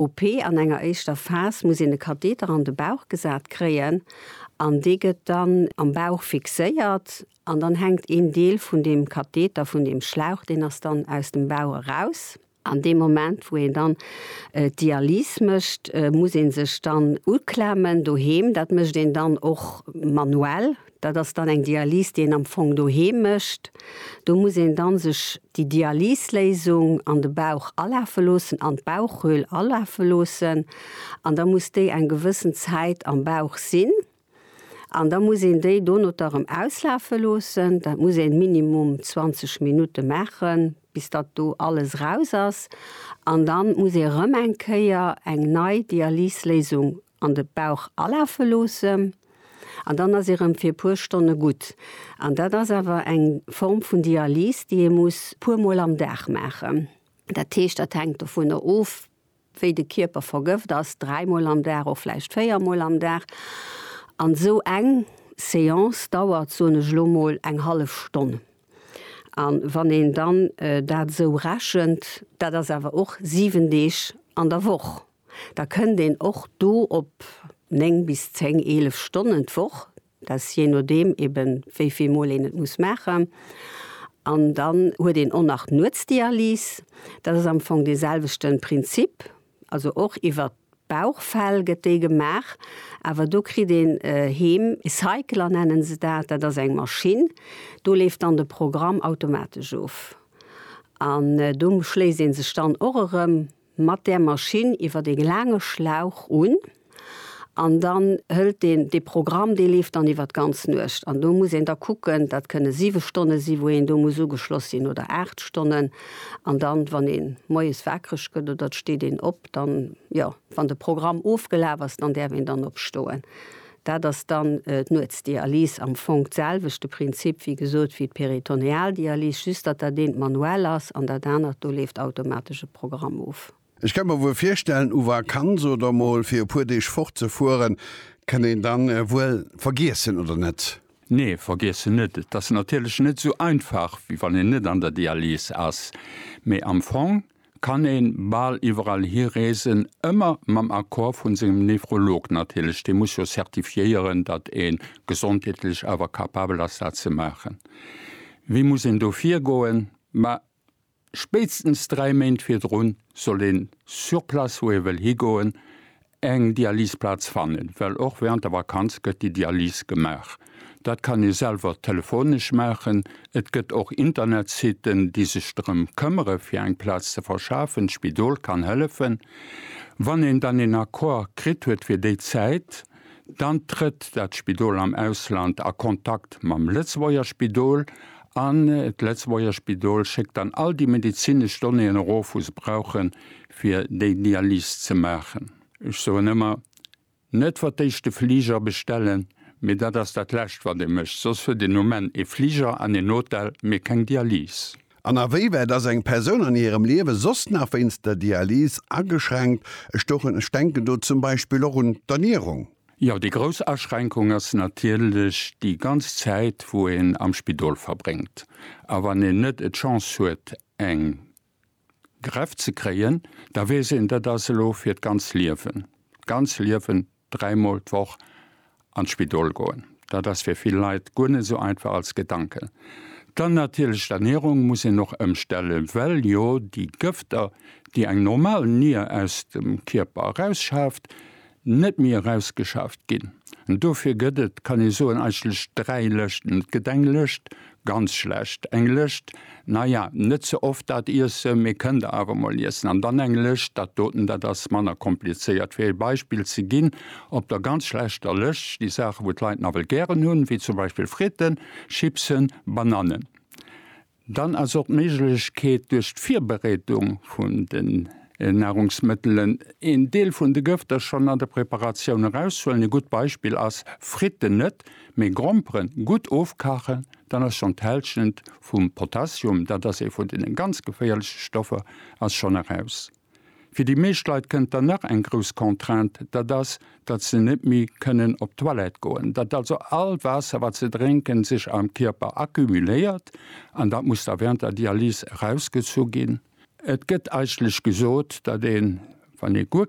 OP, an enger éischter Phas muss een e Katheter an de Bauch gesat kréien an dee gëtt dann am Bauch fixéiert an dann hänkt een Deel vun deem Katheter, vun deem Schlauch, deen ass dann aus dem Bauch eraus. An deem Moment wou een dann d'Dialyse mécht, muss ee sech dann uklemmen doheem, dat mécht een dann och manuell. Dat ass dann eng Dialyse, déi een am Fong doheem mécht. Do muss een dann sech déi Dialysléisung an de Bauch alafe loossen, an d'Bauchhöhl alafe loossen. An da muss déi eng gewëssen Zäit am Bauch sinn. An da muss een déi donoter erëm auslafe loossen. Dat muss een minimum 20 Minutte maachen, bis datt do alles raus ass. An dann muss ee erëm eng Kéier eng nei Dialysléisung an de Bauch alafe loossen an dann ass ee rëm fir e puer Stonne gutt. An dat ass awer eng Form vun Dialyse, déi ee muss puermol am Dag maachen. Dat heescht, dat hänkt dovunner of, wéi de Kierper vergëft ass, dräimol am Dag, och vläicht véiermol am Dag. An esou eng Seance dauert, soen ech elo mol, eng hallef Stonn. A wann een dann dat esou rechent, dat ass awer och siwen Deeg an der Woch. Da kënnt een och do op 9 bis 10, 11 Stonnen d'Woch, dat ass jee nodeem eben wéi vill Mol een et muss maachen. An dann huet een och nach d'Nuetsdialyse, dat ass am Fong dee selwechte Prinzip, also och iwwert d'Bauchfell gëtt déi gemaach, awer do kritt een heem e Cycler nennen se dat, dat ass eng Maschinn, do leeft dann de Programm automatesch of an do schléisst ee sech dann och erëm mat där Maschinn iwwer dee laange Schlauch un an dann hëlt deen dee Programm, dee leeft dann iwwer d'ganz Nuecht an do muss een da kucken, dat kënne siwe Stonne si wou een do muss ugeschloss sinn oder aacht Stonnen an dann wann ee moies wakereg gëtt oder et steet een op, dann jo wann de Programm ofgelaf ass, dann däerf een dann opstoen. Dat ass dann d'Nuetsdialys, am Fong d'selwechte Prinzip, wéi gesot, wéi d'Peritonealdialys, just datt dat eent manuell ass an dat anert, do leeft automatesch e Programm of. Ech ka mer wuel virstellen, u Vakanz oder mol fir e puer Deeg fort ze fueren, kënnt een dann wuel vergiessen, oder net? Nee, vergiessen net. Et ass natierlech net esou einfach, wéi wann een net an der Dialys ass, mee am Fong kann een bal iwwerall hi reesen, ëmmer mam Accord vun sengem Nephrolog natierlech, dee muss jo certifiéieren, datt een gesondheetlech awer capabel ass dat ze maachen. Wéi muss een do virgoen? Ma spéitstens 3 Méint virdrun soll een sur place wou ee wëll higoen Eng Dialyseplaz fannen, well och während der Vakanz gëtt déi Dialyse gemaach. Dat kann ee selwer telefonesch maachen. Et gëtt och Internetsiten, déi sech drëm këmmere fir eng Plaz ze verschafen. D'Spidol kann hëllefen. Wann een dann een Accord kritt huet fir déi Zäit, dann trëtt dat Spidol am Ausland a Kontakt mam Lëtzebuerger Spidol an d'Lëtzebuerger Spidol schéckt dann all déi medezinesch Donnéeën erof, wou se brauchen, fir déi Dialys ze maachen. Ech soen ëmmer, Net wat d'éischt de Fliger bestellen, mee dat ass dat Lescht, wat ee mécht. Soss huet een um Enn ee Fliger an een Hotel, mee keng Dialys. An awéiwäit ass eng Persoun an hirem Liewe soss nach wéinst der Dialys ageschränkt? Ech denken do zum Beispill och un d'Ernierung. Jo, déi grouss Aschränkung ass natierlech déi ganz Zäit, wou een am Spidol verbréngt. A wann een net d'Chance huet, eng. Greff ze kréien, da weess een, dat ass elo fir d'ganz Liewen, d'ganz Liewen, dräimol d'Woch an d'Spidol goen. Dat ass fir vill Leit guer net esou einfach als Gedanke. Dann natierlech d'Ernierung muss een och ëmstelle well jo déi Gëfter, déi eng normal Nier aus dem Kierper erausschaaft, Net méi erausgeschaaft ginn. Dofir gëtt et, kann ee soen, eigentlech dräi Lëschten. Et gëtt eng Lëscht, ganz schlecht, eng Lëscht, naja, net ze oft dat iessen, mee kënnt Der awer mol iessen, an dann eng Lëscht, dat doten, dat ass manner komplizéiert. Fir ee Beispill ze ginn, op der ganz schlechter Lëscht sti Saachen, wou d'Leit nawell gären hunn, wéi zum Beispill Fritten, Chipsen, Banannen. Dann ass och d'Méiglechkeet duerch d'Virbereedung vun den Nahrungsmëttelen een Deel vun de Gëfter schonn an der Preparatioun erauszuhuelen. Ee gutt Beispill ass Fritten net, mee Gromperen gutt ofkachen, dann ass schonn d'Hälschent vum Potassium, dat ass ee vun deene ganz geféierleche Stoffer, ass schonn eraus. Fir déi meescht Leit kënnt dann nach eng grouss Contrainte, dat ass, datt se net méi kënnen op d'Toilette goen, datt also all Waasser, wat se drénken, sech am Kierper accumuléiert an dat muss da während der Dialyse erausgezu ginn. Et gëtt eigentlech gesot, datt een, wann ee guer.